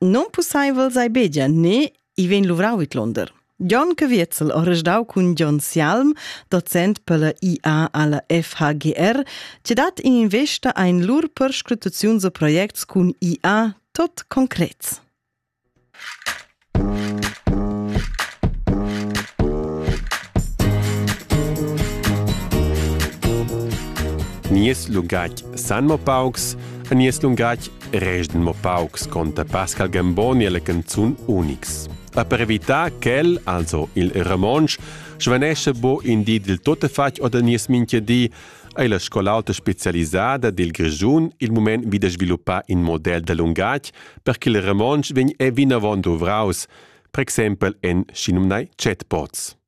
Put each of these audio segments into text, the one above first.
Nonpussaivel sei begia ne i vegn luvrau vidlonder. John Caviezel ha resdau cun John Sialm, docent per la IA alla FHGR, che dat investa ein lur perscrutaziuns e projects cun IA tot concrets. Nies lungatg san mo paucs, a nies lungatg rest mo paucs conta Pascal Gamboni alla canzun Unix. A per evitar quel, also il Ramonsch, svanesce bo in di del tuttefatg oder nies minchia di, ei la scol'alta specialisada del Grischun il moment wieder sviluppar in model da lungatg, per che il Ramonsch vegn e vinavon duvraus, per exempel en Chinumnai chatbots.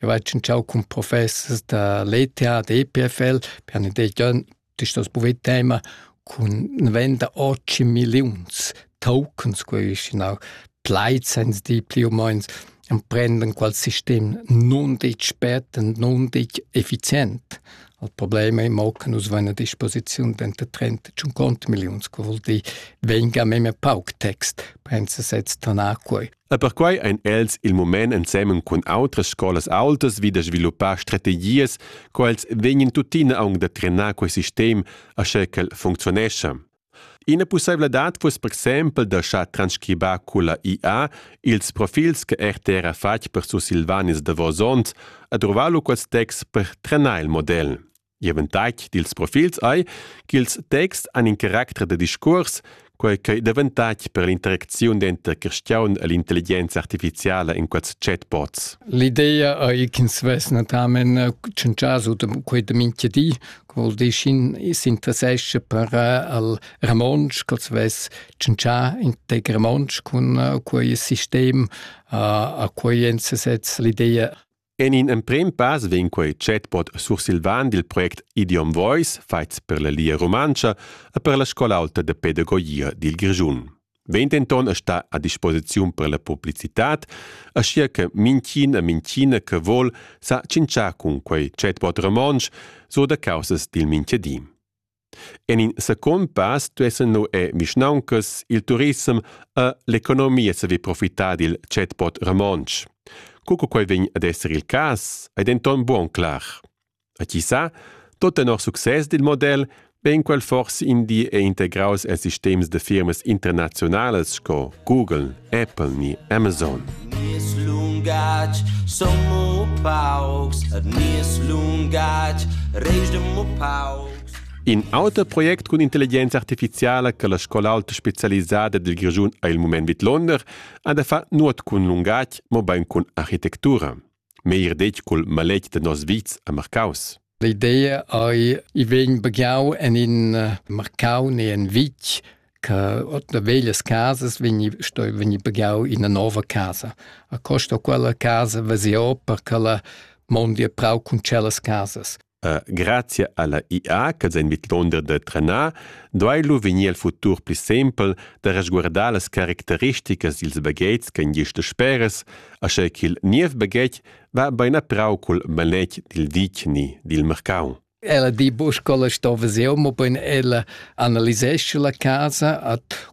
Eu hai tschintschau cun professers da l'ETH, d'EPFL, per ün degian d'istas bouvet tema cun venda ochi milliuns tokens, que isch ina plaid sainz dir plü u meins, emprendan qual sistem nun ditg spert e nun ditg effizient. Il problem è mo che nus vain a disposiziun denter 30 e 50 milliuns, che vuol dir venga memia pauc text, pensa sez tanà quei. E perquai ein els il mument ensemen cun outras scolas aultas vi da sviluppar strategias co els vegnan tuttina aunc da trenar quei sistem aschia ch'el funcziunescha. Ina pusseivladad fuss per exempel da schar transcribar culla IA ils profils che RTR ha fatg per sursilvanis davos onns e drovar lu quels texts per trenar il model. Ivan tac dils profils ei ch'ils texts han in caracter da discuors, quei ch'ei daventac per l'interacziun denter cristiaun e l'intelligenza artificiala in quels chatbots. L'idea ei ch'ins vess natamen eh, tschentschas u quei da minchia di, che vuol dir ch'in s'interessesce per eh, al romontsch, ch'els vess tschentschà integ romontsch cun eh, quei sistem, a quei ensasez l'idea En in emprem pass vegn quei chatbot sursilvan dil project Idiom Voice, fatgs per la Lia Rumantscha e per la scola aulta de pedagogia dil Grischun. Vegn denton a star a disposiziun per la publicitad, aschia che minchin e minchina che vol sa tschintschar cun quei chatbot romontsch, so da causas dil minchadi. En in secund pass stuessen nu e vischnauncas, il turissem e l'economia saver profitar dil chatpot romontsch. Co che quel vegn ad esser il cas, ei denton buon clar. A chi sa, tot tenor success dil model vegn quel forse in di e integraus en sistems de firmas internazionalas sco Google, Apple ni Amazon. Nies lungatg son mo paucs, et nies lungatg reis mo paucs. In auter project cun intelligenza artificiala che la scola alta specialisada dil Grischun ha il mument vid Londer ha da far nuot cun lungatg, mobein cun architectura. meglier detg cul maletg da nos vits a Marcaus. L'idea ei i vegn bagiau en in eh, Marcau ne en Vitg che otna veglias casas vegni sto vegni bagiau in una nova casa. A costa quella casa veseo per che la mondi a prau cun celas casas. Grazia alla IA che zain vidlonder da trenar duai lu vegnir il futur pli sempel da resguardar las caracteristicas dils baghetgs ch'ein gist dasperas, aschia ch'il niev baghetg va bein a prau cul maletg dil vicni dil marcau. Ella di buca scola sto visiu, mobein ella analisescha la casa, at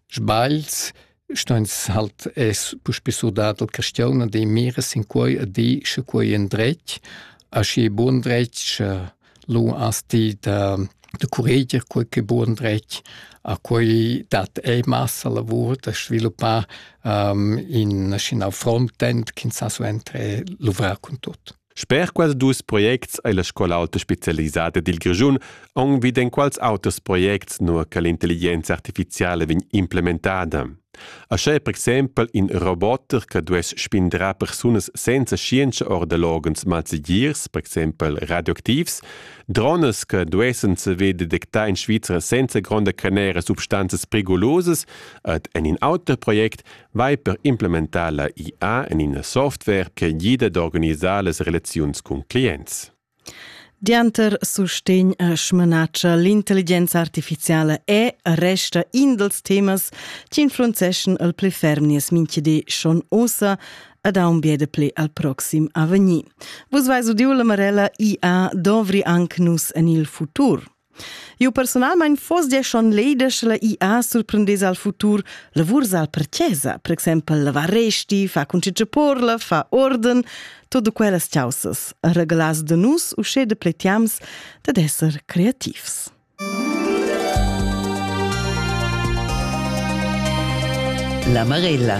Sbagls stans halt es puspè surdà dal chastiun ad e mira sin quai e di sche quai è ün dretg, aschi bun dretg sche lu as di da da curreger quai ch'è bun dretg. A quai dat ei massa lavur da sviluppar in schinau frontend ch'ins sa suenter luvrar cun tut. Sper quels dus projects ei la scola auta specialisada dil Grischun aunc vid enquals auters projects, nua che l'intelligenza artificiala vegn implementada. Ascha è per exempel in roboter che duess spindrar persunas senza scienza ord loghens malsegirs, per exempel radioactivs, drones che duessen saver detectar in Svizra senza gronda canera substanzas perigolosas ed en in auter project vai per implementar la IA en ina software che gida d'organisar las relaziuns cun clients. Dianter sustegn e smanatscha l'intelligenza artificiala è resta in dels temas che influenzeschan il pli ferm nies minchidi schon ossa ed ha un biede pli al proxim avvenir. Vus vais udiu la Marella IA dovri anc nus en il futur. Eu personalmaing foss gia schon leda sche la IA surprendess al futur lavurs al per chesa, per exaimpel lavar resti, fa cuncitge porla, fa orden, todo quellas chaussas, regalas da nus usché de pletiams dad esser creativs. La Marella